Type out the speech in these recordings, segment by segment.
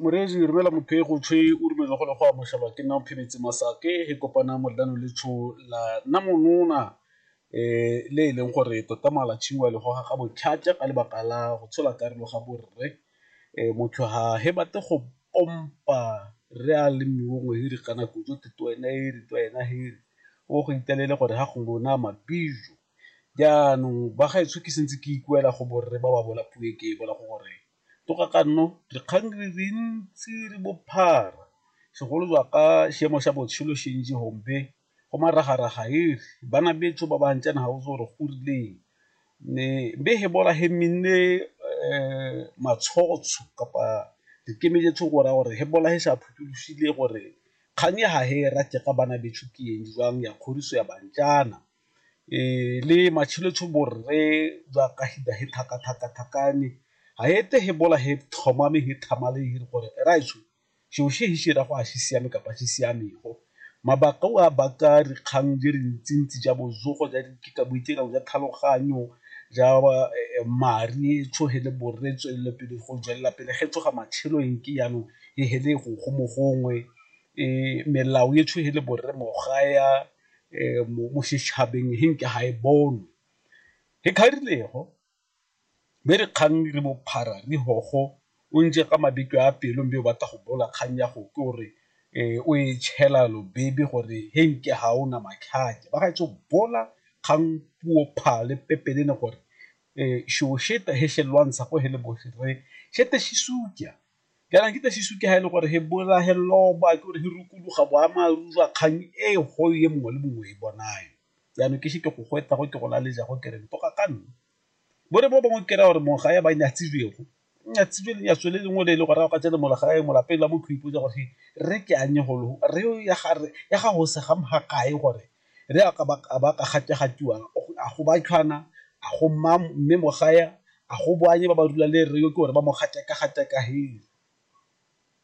Morezi romela motho e go tshwe o dumele go le go amogelwa ke nna phebetse masake e kopana modlano le tsho la nna monona um le e leng gore tota mala tshingwa le goga ga botlhatswa ka lebaka la go tshola karolo ga borre um motho ha he batle go pompa re a le mongwe hiri kana kudu tete wena ere to wena hiri o go itelele gore ha go lona mabijo. Jaanong bagaetsho ke sentse ke ikuela go borre ba ba bolapuwe ke bola go gore toga ka nno re kgang re re ntse re bophara segolo jwa ka seemo sa botshelo sentse gompe go maragaraga e re bana betso ba ba ntsana ga o tse gore go rileng ne be he bola he minne matshotsho kapa re kemeletse go ra gore he bola he sa phuthologile gore kgang ya ga he rate ka bana betso ke eng jwang ya kgoriso ya bantjana le matshelo tsho bo rre jwa ka he he thaka thaka thakane ha e te he bola he thoma me he thama le hire gore ra etsho sho she he shira go a se siame kapa se siame go mabaka o a baka re kgang di re ntsi ntsi ja botsogo ja di ke ka boitekanelo jwa tlhaloganyo ja madi tsho he le borre tswelele pele go tswelela pele ge tsoga matshelo eng ke yanong he he le go go mo gongwe melao e tsho he le borre mo ga ya. mo setšhabeng he nke ga e bonwe he kgarilego be re kgang re bophara re hogo o ntse ka mabitso a pelo mme o batla go bola kgang ya go ke gore o e tšhela lo baby gore he nke ga o na matlhatse ba ga etso bola kgang puo pha le pepelele gore e shosheta he se lwantsha go he le botlhe re shete se suja Kana ke tle sisuke ha e le gore he bola he loba ke gore he rukuluga boammaaruri jwa kgang e go e mongwe le mongwe e bonayo. Jaanong ke se ke go go eta go ke go laleja go kere ntoka ka nna. Bo re bo bangwe kera gore mongwe ga ya ba nyatsibego nyatsibele nyatso le lengwe le e le gore a ka tsena mola gae molapeng la motho o ipotsa gore he re ke anye golo re ya ga re ya ga go se ga kae gore re a ba ka gategatiwang a go ba tlhwana a go mma mme mo gae a go boanye ba ba rula le re yo ke gore ba mo gateka gateka he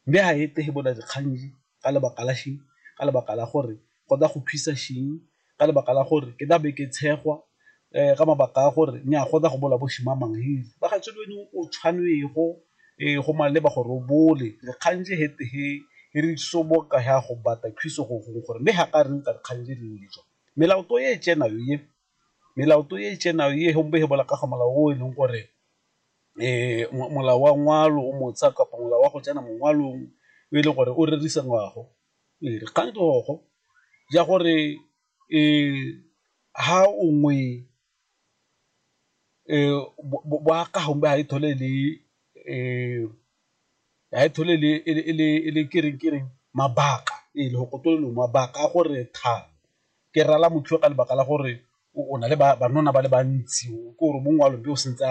mme ha e tege bona dikganji ka lebaka la sheng ka lebaka la gore go tla go thusa sheng ka lebaka la gore ke tla be ke tshegwa um ka mabaka a gore ne a kgona go bola bo shimamang he ba ga tsebe wena o tshwanwego um go maleba gore o bole re kgantse he he e re soboka ya go bata thuso go gongwe gore mme ga ka reng ka dikgang tse dingwe dijo melaoto e e tsenayo ye melaoto e e tsenayo ye gompe he bola ka ga molao o e leng gore um molao wa ngwalo o motsha kapa molao wa go tsena mongwalong o e leng gore o rerisa ngwago ee dikgang tsogo ja gore ha ongwe bokagang ba ha e thole le ha e thole e le kereng kereng mabaka e le go tlola mabaka a gore tha ke rala motho ka lebaka la gore o na le banana ba le bantsi o ke gore mongwe wa lone o santse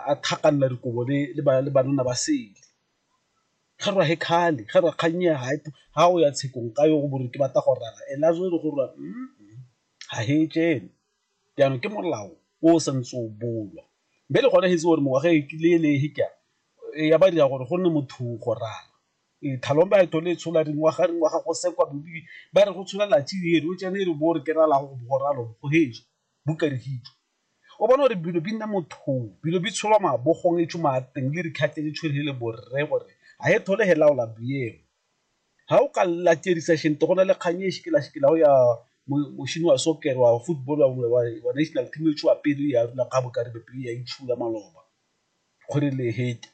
a tlhakanela dikobo le banna ba sele. ga rra he kgale ga rra kgang ya ga o ya tshekong ka yo go bore ke batla go raya and a gore gore ga he jele jaanong ke molao o o santse o bolwa mme le gone getse gore mengwaga e kile le he ke ya ba dira gore go nne motho go raya thalong ba eto le tshola dingwaga dingwaga go sekwa bobi ba re go tshola latsi ere o tsene e re bo re ke raya go go ralo go heje. Buka Rihicho o bona gore bilo bi nna mothong, bilo bi tsholwa mabogong e tšhuma a teng le rikhatse le tshwere le borre gore ha he thole he laola biemo. Ha o ka la tšerisa shente go na le kgang e shikela shikela ho ya mošini wa soccer wa football wa national team e tšhua pele ya rula ka boka ribe pele ya itšhula maloba gore le hete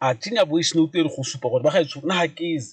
a tsenya voice note e re go supa gore ba ga e tshwere na ha keze.